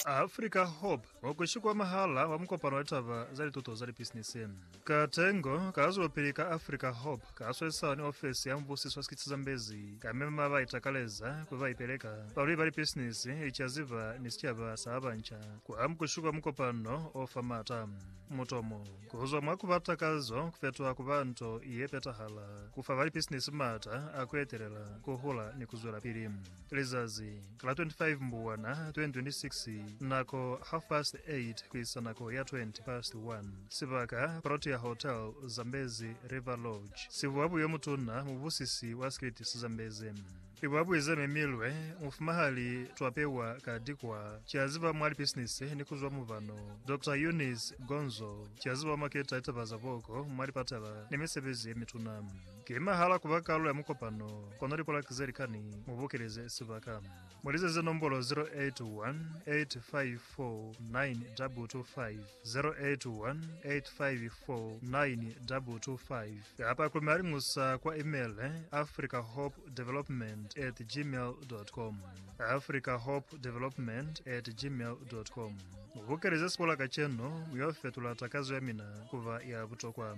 Africa Hope wa ku shikwa mwahal'a wa mukopano wa litaba za lituto za lipisinisi. Katengo ka zwelopili ka Africa Hope ka swesisana ni ofesi ya mubusiso wa sikitsi Zambezi ka mema ba itakaleza kuli ba ipeleka, balweli ba lipisinisi, licaziba ni sicaba sa ba banca ku amukushi kwa mukopano o fa m'ata. Mutomo. Ku zwa mwa ku ba takazo ku fetoha ku ba nto ye petahala, ku fa ba lipisinisi m'ata a ku etelela, ku hula ni ku zwelapili. Lizazi la 25 Mbubwana 2026, nako half past 8 ku isa nako ya 20 past 1, sibaka Protea Hotel, Zambezi River Lodge, sibuwa buyo mutuna mubusisi wa Scritis Zambezi. I ba buize mi milwe mufuma ha li twapewa ka dikwa ki a ziba mwa lipisinisi ni ku zwa mubano. Doctor Eunice Gonzo ki a ziba mwa keta litaba za boko mwa lipatala ni misebezi ye mituna. Ki mahala ku ba kalulo ya mukopano, kono lipolaki ze likani mu bokeleze sibaka. Mu lizeze nombolo 081 85 0848248525 kapa ku malingusa kwa email africahopedevelopment at gmail.com africahopedevelopment at gmail.com Mu bukeleze sikola kacenu, mu yo fetula takazo ya mina ku ba ya butokwa.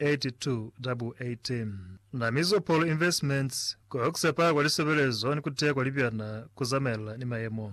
8218 Na Mizopol Investments, Ku Hokisa Paa kwa Lisebelezo ni Ku Teya kwa Libyana ku Zamaelana ni Mayemo.